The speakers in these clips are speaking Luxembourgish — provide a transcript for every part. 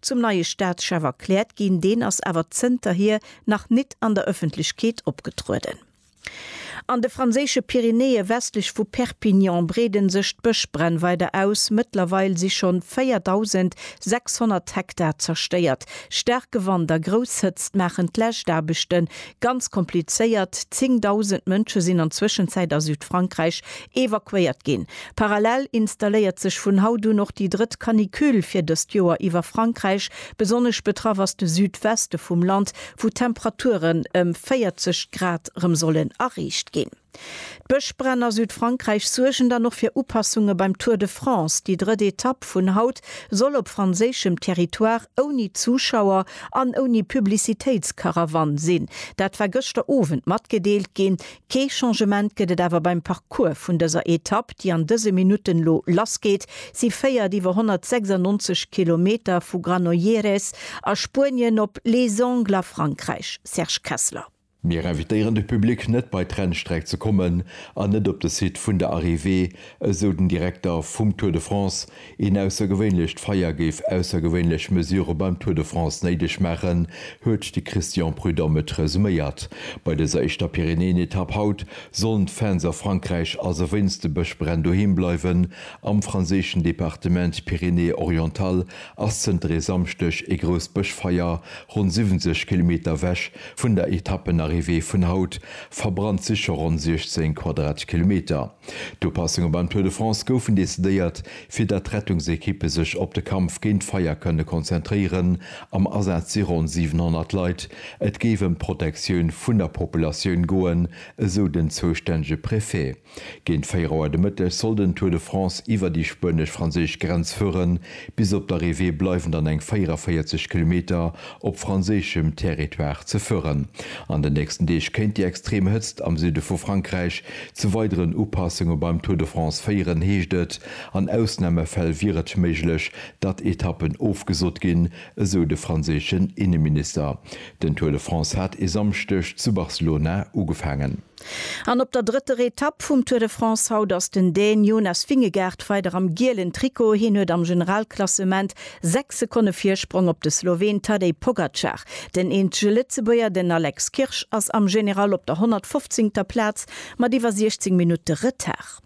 zum neie Staatschef erkläert ginn, deen ass awer zënterhier nach nit an der Ëffentlechkeet opgetrueden. An de franséische Pyrenäe westlech vu Perpignan breede sech d'Bëschbränn weider aus, mëttlerweil si schonn 4.600 Hektar zerstéiert. Staarke Wand a grouss Hëtzt maachen d'Läschtaarbechte Ganz komplizéiert, 10.000 Mënsche sinn an Zwëschenzäit a Südfrankräich evakuéiert ginn. Parallel installéiert sech vun haut un och déi drëtt Canicule fir dëst Joer iwwer Frankräich. Besonnesch betraff ass de Südweste vum Land, wou d'Temperaturen ëm 40 Grad rëm sollen erreecht ginn. D'Bëschbränn a Südfrankräich suergen dann och fir Upassunge beim Tour de France. Déi drëtt Etapp vun haut soll op franséischem Territoire ouni Zuschauer an ouni Publicitéitskarawann sinn. Dat war gëschter Owend matgedeelt ginn. Kee Changement gëtt et awer beim Parcours vun dëser Etapp, déi an dëse Minutten elo lassgeet. Si féiert iwwer 196 Kilometer vu Granollers a Spuenien op Les Angles a Frankräich. Serge Kessler. Mir invitéieren de Public net bei d'Rennstreck ze kommen an net op de Site vun der Arrivée, esou den Direkter vum Tour de France. Een aussergewéinlecht Feier géif aussergewéinlech Mesurë beim Tour de France néideg maachen, huet de Christian Prudhomme et resuméiert. Bei dëser éischter Pyrenäen-Etapp haut sollen d'Fans a Frankräich also wéinst de Bëschbränn doheem bleiwen. Am franséischen Departement Pyrénées-Orientales ass zënter e Samschdeg e grousst Bëschfeier ronn 70 Kilometer ewech vun der Etappenarrivée vun haut, verbrannt si scho ronn 16 Quadratkilometer. D'Upassunge beim Tour de France goufen decidéiert, fir datt d'Rettungsekippe sech op de Kampf géint d'Feier kënne konzentréieren. Am Asaz si ronn 700 Leit. Et géif ëm d'Protektioun vun der Populatioun goen, esou den zoustännege Préfet. Géint 4 Auer de Mëtteg soll den Tour de France iwwer déi spuenesch-franséisch Grenz fueren. Bis op d'Arrivée bleiwen dann eng 44 Kilometer op franséischem Territoire ze fueren. An den nächsten Deeg kéint déi extrem Hëtzt am Süde vu Frankräich zu weideren Upassunge beim Tour de France féieren, heescht et. An Ausnamefäll wier et méiglech, datt Etappen ofgesot ginn, esou de franséischen Inneminister. Den Tour de France hat e Samschdeg zu Barcelona ugefaangen. An op der drëtter Etapp vum Tour de France haut ass den Dän Jonas Vingegaard weider am gielen Trikot. Hien huet am Generalklassement 6 Sekonne Virsprong op de Sloween Tadej Pogacar. Den eenzege Lëtzebuerger, den Alex Kirsch, ass am General op der 115. Plaz mat iwwer 16 Minutte Retard.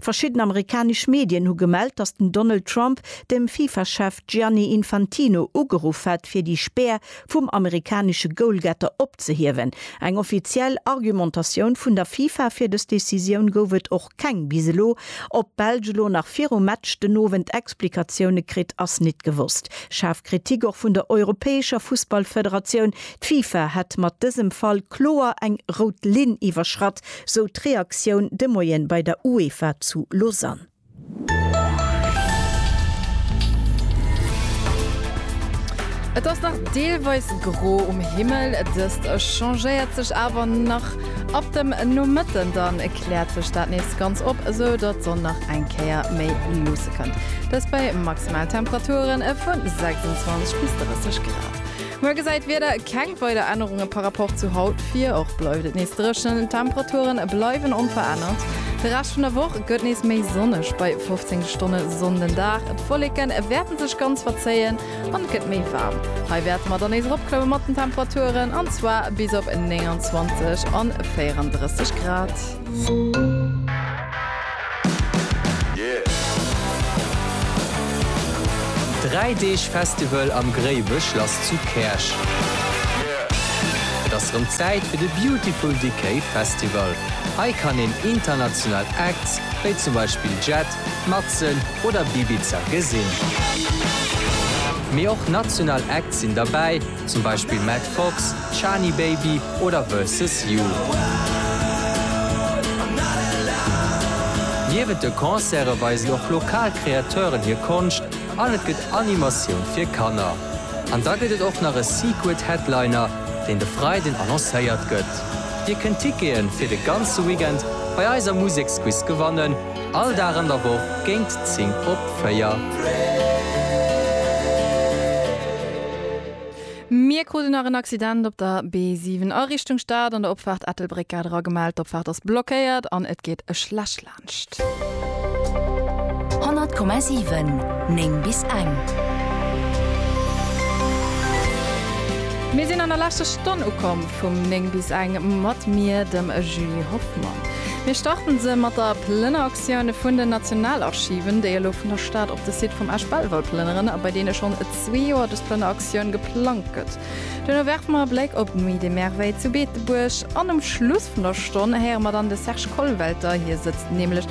Verschidden amerikanesch Medien hu gemellt, datt den Donald Trump dem Fifa-Chef Gianni Infantino ugeruff hätt fir déi Spär vum amerikanesche Goalgetter opzehiewen. Eng offiziell Argumentatioun vun der Fifa fir dës Decisioun gouf et och keng bis elo. Ob d'Belsch elo nach virum Match den Owend Explikatioune kritt, ass nit gewosst. Schaarf Kritik och vun der europäescher Fussballfederatioun. D'Fifa hätt mat dësem Fall kloer eng rout Linn iwwerschratt, Sou d'Reaktioun de Moien bei der UEFA zu Lausanne. Et ass nach deelweis gro um Himmel, dëst changéiert sech awer nach ab dem Nomëtten, dann kläert sech dat nees ganz op, sou datt d'Sonn nach eng Kéier méi luusse kënnt, dëst bei maximal Temperaturen vu 26 bis 30 Grad. Muer gesäit d'Wieder keng weider Ännerunge par Rapport zu haut vir. Och bleift et nees dréchen, d'Temperature bleiwen onverännert. De Rescht vun der Woch gëtt nees méi sonneg, bei 15 Stonne Sonn den Dag. D'Wolleke wäerte sech ganz verzéien an et gëtt méi waarm. Hei wäerte mer dann nees eropklomme mat den Temperaturen, an zwar bis op 29 an 34 Grad. Dräi Deeg Festival am Gréiwe Schlass zu Käerch. Et ass rëm Zäit fir de Beautiful Decay Festival. Hei kann een international Acts wéi zum Beispill Jet, Matzen oder Bibiza gesinn. Mee och national Acts sinn derbäi. zum Beispill Matt Fox, Shani Baby oder Versus You. Niewent de Concerte weisen och lokal Kreateuren hir Konscht an et gëtt Animatioun fir Kanner. An da gëtt et och nach e Secret Headliner, deen de Freiden annoncéiert gëtt. Dir kënnt Tickete fir de ganze Weekend bei eiser Museksquiz gewannen. All Dag an der Woch géint 10 op 4. Mir kruten nach en Accident op der B7 a Richtung Stad an der Opfaart Ettelbréck. Gare era gemellt, d'Opfaart ass blockéiert an et geet e Schläch laanscht. 100,7 9 bis eng. Mir sinn an der leschter Stonn ukomm vum 9 bis eng mat mir, dem Julie Hoffmann. Mir starten se mat der Plënneraktioun vun den Nationalarchiven, déi elo vun der Stad op de Site vum Esch Belval plënneren a bei deene schonn et zwee Joer dës Plënneraktioun geplangt gëtt. Duerno werfe mer e Bléck op d'Nuit des Merveilles zu Beetebuerg an um Schluss vun der Stonn héiere mer dann de Serge Kollwelter. Hie sëtzt nämlech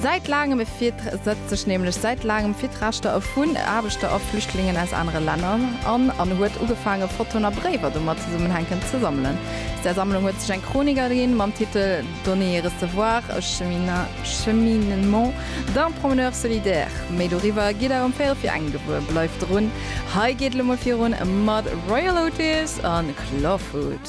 säit laangem setzt sech nämlech säit laangem fir d'Rechter vun Aarbechter a Flüchtlingen aus anere Länner an an huet ugefaange Fotoen a Bréiwer domat zesummenhänken ze sammelen. Aus där Sammlung huet sech eng Chronik erginn, mam Titel Donner et recevoir, e cheminement d'un promeneur solidaire. Méi doriwwer gitt der ëm 14 Auer gewuer. Bleift drun, hei geet et elo mol virun mat Royal Otis a Clawfoot.